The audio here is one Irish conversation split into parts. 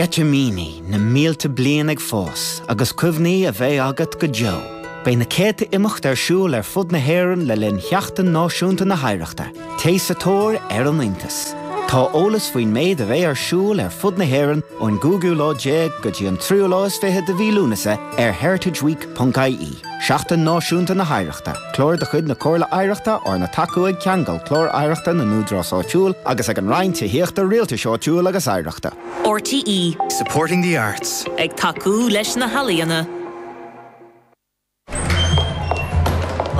Sceitimíní na mílte bliain ag fás agus cuimhní a bheidh agat go deo. Beidh na céadta imeacht ar siúl ar fud na hÉireann le linn Sheachtain Náisiúnta na hOidhreachta. Téigh sa tóir ar an iontas. Tá eolas faoin méid a bheidh ar siúl ar fud na hÉireann ón gcúigiú lá déag go dtí an tríú lá is fiche de mhí Lúnasa ar heritageweek.ie. Seachtain Náisiúnta na hOidhreachta, clár de chuid na Comhairle Oidhreachta arna tacú ag Ceangal, Clár Oidhreachta na nÚdarás Áitiúil, agus ag an Roinn Tithíochta, Rialtais Áitiúil agus Oidhreachta. RTÉ. Supporting the arts. Ag tacú leis na healaíona.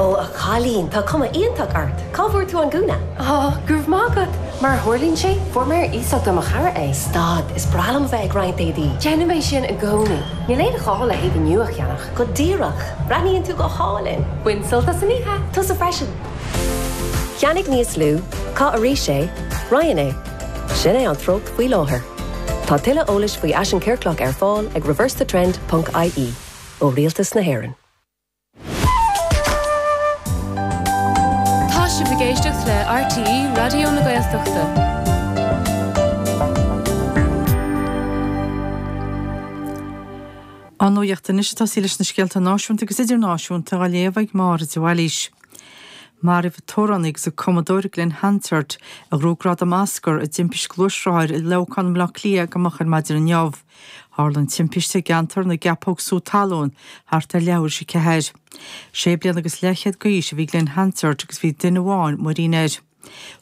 Ó a chailín, tá cuma iontach ort! Cá bhfuair tú an gúna? Ó, go raibh maith agat! Mar a tharlaíonn sé, fuair mé ar iasacht ó mo chara é. Stad, is breá liom a bheith ag roinnt éadaí. Déanaim é sin i gcónaí. Níl aon ghá le héadaí nua a cheannach. Go díreach! Breathnaíonn tú go hálainn! Bain sult as an oíche! Tusa freisin! Ceannaigh níos lú, caith arís é, roinn é. Sin é an treocht faoi láthair. Tá tuilleadh eolais faoi fhaisean ciorclach ar fáil ag reversethetrend ponc ie, ó Rialtas na hÉireann. Tá sibh ag éisteacht le RTÉ Raidió na Gaeltachta. An nuaíocht anois, seo í leis na scéalta náisiúnta agus idirnáisiúnta dhá léamh ag Máire de Bhailís. Maraíodh an t-amhránaí agus an cumadóir Glen Hansard, a ghnóthaigh gradam Oscar, i dtimpiste gluaisrothair i Leamhcán Bhaile Átha Cliath go moch ar maidin inniu. Tharla an timpiste i gceantar na gCeapóg Sú Talún thart ar leathuair théis a ceathair. Sé bliana agus leathchéad d'aois a bhí Glen Hansard agus bhí duine amháin muirín air.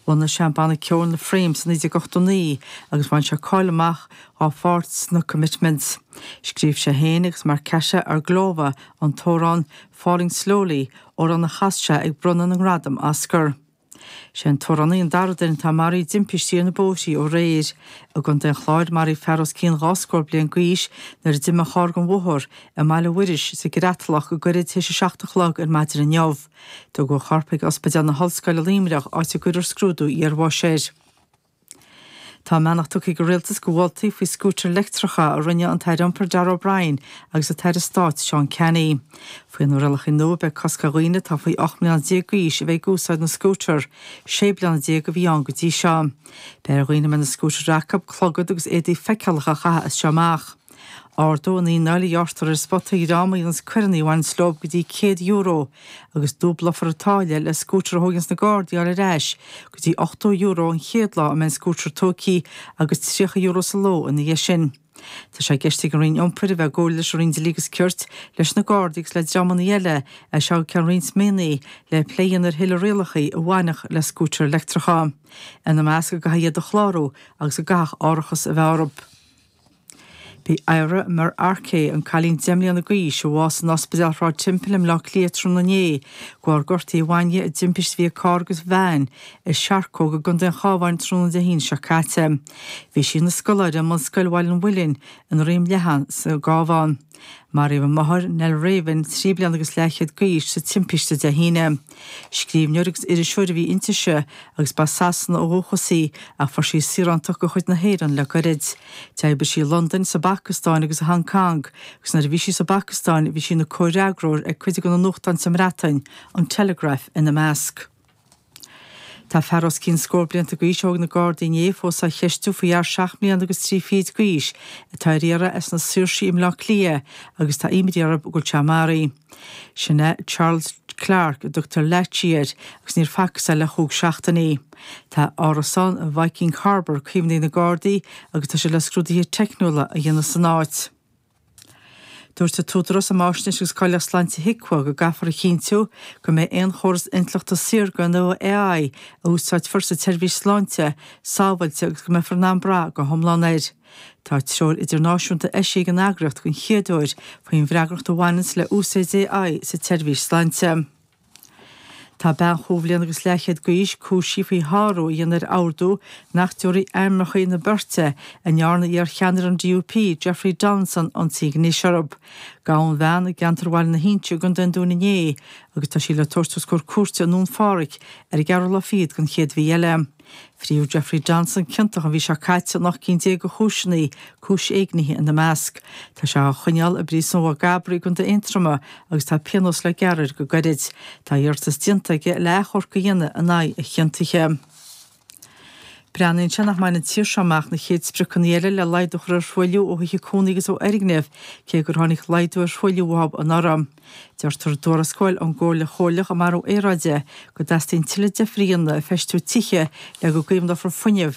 Bhunaigh sé an banna ceoil The Frames i 1989 agus bhain sé cáil amach dhá pháirt sna Commitments. Scríobh sé féin agus Markéta Irglová an t-amhrán Falling Slowly, amhrán a chas sé ag bronnadh na ngradam Oscar. Sé an t-amhránaí an dara duine atá maraithe i dtimpistí ar na bóithrí ó aréir. I gContae an Chláir, maraíodh fear os cionn dhá scór bliain d'aois nuair a d'imigh a charr den bhóthar i mBaile Mhuiris sa gCreatalach go gairid tar éis a seacht a chlog ar maidin inniu. Tugadh a chorp ag Ospidéal na hOllscoile i Luimneach, áit a gcuirfear scrúdú iarbháis air. Tá a mbeannacht tugtha ag an Rialtas do mholtaí faoi scútair leictreacha a rinne an tAire Iompair Darragh O'Brien agus an tAire Stáit Seán Canney. Faoi na rialacha nua beidh cosc ar dhaoine atá faoi 18 mbliana d'aois a bheith ag úsáid na scútar, 16 bliana a bhí ann go dtí seo. Beidh ar dhaoine a mbeidh na scútair acu, clogad agus éadaí feiceálacha a chaitheamh as seo amach. Ardóidh an fhíneáil a ghearrtar ar an spota as coireanna a bhaineanns leo go dtí €100 agus dúblófar an táille le scútair a thóganns na Gardaí a fháil ar ais go dtí €80 an chéad lá a mbeidh an scútar tógtha agus €30 sa ló ina dhiaidh sin. Tá sé i gceist ag an Roinn Iompair a bheith i gcomhairle leis an Roinn Dlí agus Cirt, leis na Gardaí agus le dreamanna eile as seo go ceann roinnt míonna le plé a dhéanamh ar thuilleadh rialacha a bhainfeadh le scútair leictreacha, ina measc go gcaithfí iad a chlárú agus go gcaithfeadh árachas a bheith orthu. B'í Éire Mer Arcé, an cailín deich mbliana d'aois a bhásaigh in Ospidéal Shráid Temple i mBleá Cliath tráthnóna inné de bharr gortuithe a bhain di i dtimpiste a bhí ag carr agus veain i Searcóg i gContae an Chabháin tráthnóna Dé hAoine seo caite. Bhí sí ina scoláire i mBunscoil Bhaile an Mhuilinn i nDroim Leathan sa gCabhán. Maraíodh a máthair, Nell Raven, trí bliana agus leathchéad d'aois sa timpiste Dé hAoine. Scríbhneoir agus iriseoir a bhí inti ise agus b'as Sasana ó dhúchas í, ach fuair sí saoránacht de chuid na hÉireann le gairid. D'oibrigh sí i Londain, sa bPacastáin agus i Hong Cong, agus nuair a bhí sí sa bPacastáin bhí sí ina comhfhreagróir ag cuid de na nuachtáin sa mBreatain, an Telegraph ina measc. Tá fear os cionn scór blianta d'aois a thóg na Gardaí inné fós á cheistiú faoi fhear seacht mbliana agus trí fichid d'aois atá ar iarraidh as na Saoirsí i mBleá Cliath agus tá imní orthu go bhfuil sé maraithe. Sin é Charles Clarke, a dtugtar Latchy air, agus níor facthas é le chúig seachtainí. Tá a árasán i Viking Harbour caomhnaithe ag na Gardaí, agus tá siad le scrúduithe teicniúla a dhéanamh san áit. Dúirt an tÚdarás um Fháisnéis agus Cáilíocht Sláinte, HIQA, go gcaithfear a chinntiú go mbeidh aon chóras intleachta saorga nó AI a úsáidfear sa tseirbhís sláinte sábháilte agus go mbeifear in ann brath go hiomlán air. Tá treoir idirnáisiúnta eisithe ag an eagraíocht den chéad uair faoin bhfreagracht a bhaineanns le úsáid AI sa tseirbhís sláinte. Tá bean chúig bhliana agus leathchéad d'aois cúisithe faoi shárú a dhéanamh ar ordú nach dtabharfaí ainmneachaí na beirte a ndearna iarcheannaire an DUP, Jeffrey Donaldson, ionsaí gnéis orthu. Gabhadh an bhean i gceantar Bhaile na hInse i gcontae an Dúin inné agus tá sí le tabhairt os comhair cúirte i nDún Phádraig ar an gceathrú lá fichead den chéad mhí eile. Fríothadh Jeffrey Donaldson ciontach an mhí seo caite in ocht gcinn déag de chúiseanna, cúis éignithe ina measc. Tá sé á choinneáil i bPríosún Mhaigh gCabraí i gContae Aontroma agus tá pionós le gearradh air go gairid. Tá iarratas déanta aige le achomharc a dhéanamh in aghaidh a chiontaithe. Breathnaíonn sé nach mbainfidh an tír seo amach na chéad spriocanna eile le laghdú a chur ar thruailliú ó thithe cónaí agus ó fhoirgnimh, cé gur tháinig laghdú ar thruailliú uathub anuraidh. Deirtear i dtuarascáil ón gComhairle Chomhairleach um Athrú Aeráide go dteastaíonn tuilleadh deifre in aisfheistiú tithe le go gcaomhnófar fuinneamh